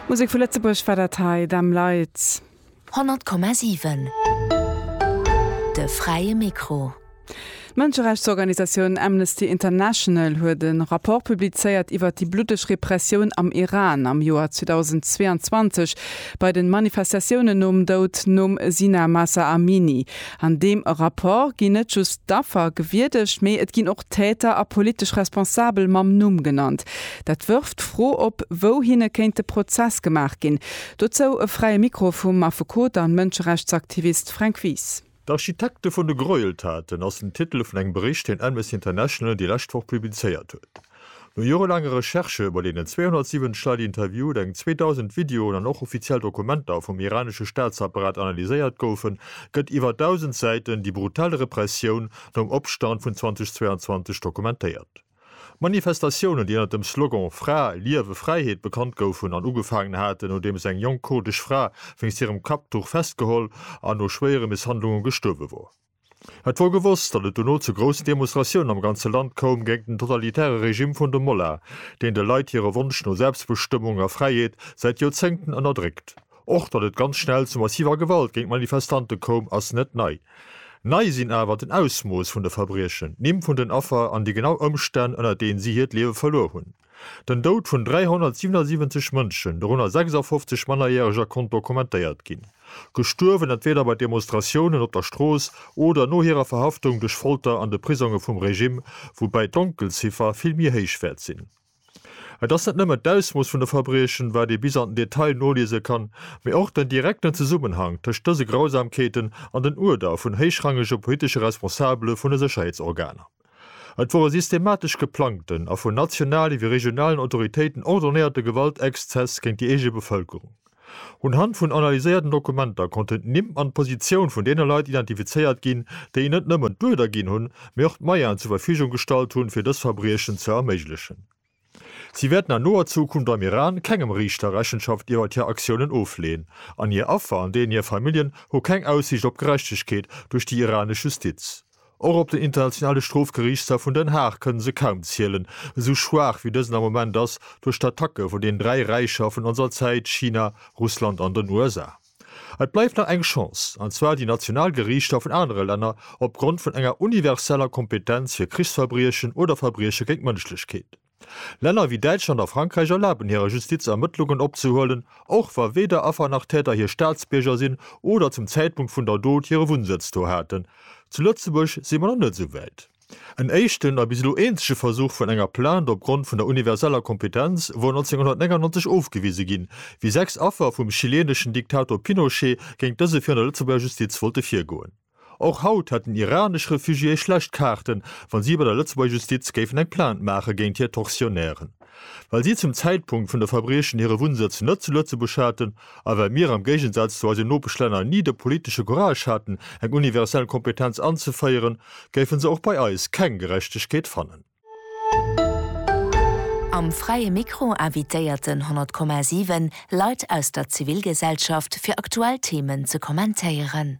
Musek vu Lëtzebuerg war dat hei, Them Lights. 100,7 De fräie Mikro. D'Mënscherechtsorganisatioun Amnesty International huet e Rapport publizéiert iwwer déi bluddeg Repressioun am Iran am Joer 2022 bei de Manifestatiounen nom Doud nom Sina Mahsa Amini. An deem Rapport ginn net just d'Affer gewierdegt, mee et ginn och d'Täter a politesch Responsabel mam Numm genannt. Dat wërft d'Fro op, wou hinne kéint de Prozess gemaach ginn. Dozou e Fräie Mikro vum Affekot an Mënscherechtsaktivist Fränk Wies. D'Architekte vun de Gräueltaten ass den Titel vun engem Bericht, deen Amnesty International déi lescht Woch publizéiert huet. No jorelaange Recherchë, bei deenen 270 Leit interviewt, eng 2.000 Videoen an och offiziell Dokumenter vum iranesche Staatsapparat analyséiert goufen, gëtt iwwer 1.000 Säiten déi brutal Repressioun nom Opstand vun 2022 dokumentéiert. Manifestatiounen, déi ënnert dem Slogan Fra, Liewe, Fräiheet bekannt goufen an ugefaangen haten, nodeems eng jonk kurdesch Fra wéinst hirem Kapptuch festgeholl an no schwéiere Misshandlunge gestuerwe wor. Et wor gewosst, datt et dono zu groussen Demonstratiounen am ganze Land koum géint den totalitäre Regime vun de Molla, deen de Leit hire Wonsch no Selbstbestëmmung a Fräiheet säit Joerzéngten ënnerdréckt. Och datt et ganz schnell zu massiver Gewalt géint d'Manifestante koum, ass net nei. Nei sinn awer den Ausmooss vun de Verbriechen, d'Nimm vun den Affer an déi genau Ëmstänn, ënner deenen si hiert Liewe verluer hunn. Den Doud vun 377 Mënschen, dorënner 56 Mannerjäreger konnt dokumentéiert ginn. Gestuerwen entweeder bei Demonstratiounen op der Strooss oder no hirer Verhaftung duerch Folter an de Prisonge vum Regime, woubäi d'Donkelziffer vill méi héich wäert sinn. Et ass net nëmmen d'Ausmooss vun de Verbriechen, wat ee bis an den Detail noliese kann, mee och den direkten Zesummenhang tëscht dëse Grausamkeeten an den Uerder vun héichrangege politesche Responsabele vun de Sécherheetsorganer. Et wor e systematesch geplangten a vun nationale wéi regionalen Autoritéiten ordonnéierte Gewaltexzess géint déi eege Bevëlkerung. Unhand vun analyséierten Dokumenter konnten d'Nimm an d'Positioun vun deene Leit identifizéiert ginn, déi net nëmmen d'Uerder ginn hunn, mee och d'Moyenen zur Verfügung gestallt hunn, fir dës Verbriechen ze erméiglechen. Si wäerten an noer Zukunft am Iran kengem Riichter Rechenschaft iwwert hir Aktiounen ofleeën, an hir Affer an deenen hir Familljen hu keng Aussiicht op Gerechtegkeet duerch déi iranesch Justiz. Och op den Internationale Strofgeriichtshaf vun Den Haag kënne se kaum zielen, esou schwaach wéi dësen am Moment ass duerch d'Attacke vun den dräi Räicher vun onser Zäit, China, Russland an den USA. Et bleift nach eng Chance, an zwar déi national Geriichter vun anere Länner opgrond vun enger universeller Kompetenz fir Krichsverbriechen oder Verbrieche géint d'Mënschlechkeet. Länner wéi Däitschland a Frankräich erlaben hirer Justiz Ermëttlungen opzehuelen, och wa weder Affer nach Täter hir Staatsbierger sinn oder zum Zäitpunkt vun der Dot hire Wunnsëtz do haten. Zu Lëtzebuerg si mer nach net esou wäit. En éischten a bis elo eenzege Versuch vun enger Plainte opgrond vun der universeller Kompetenz wor 1999 ofgewise ginn, wéi sechs Affer vum chileeneschen Diktator Pinochet géint dëse virun der Lëtzebuerger Justiz wollte virgoen. Och haut hätten iranesch Refugiéë schlecht Kaarten, wa si bei der Lëtzebuerger Justiz géifen eng Plainte maache géint hir Tortionnairen, well si zum Zäitpunkt vun de Verbriechen hire Wunnsëtz net zu Lëtzebuerg haten, A well mir, am Géigensaz zu eisen Nopeschlänner, ni de politesche Courage haten, eng universell Kompetenz anzeféieren, géife se och bei eis keng Gerechtegkeet fannen. Am Fräie Mikro invitéiert den 100,7 Leit aus der Zivilgesellschaft fir aktuell Themen ze kommentéieren.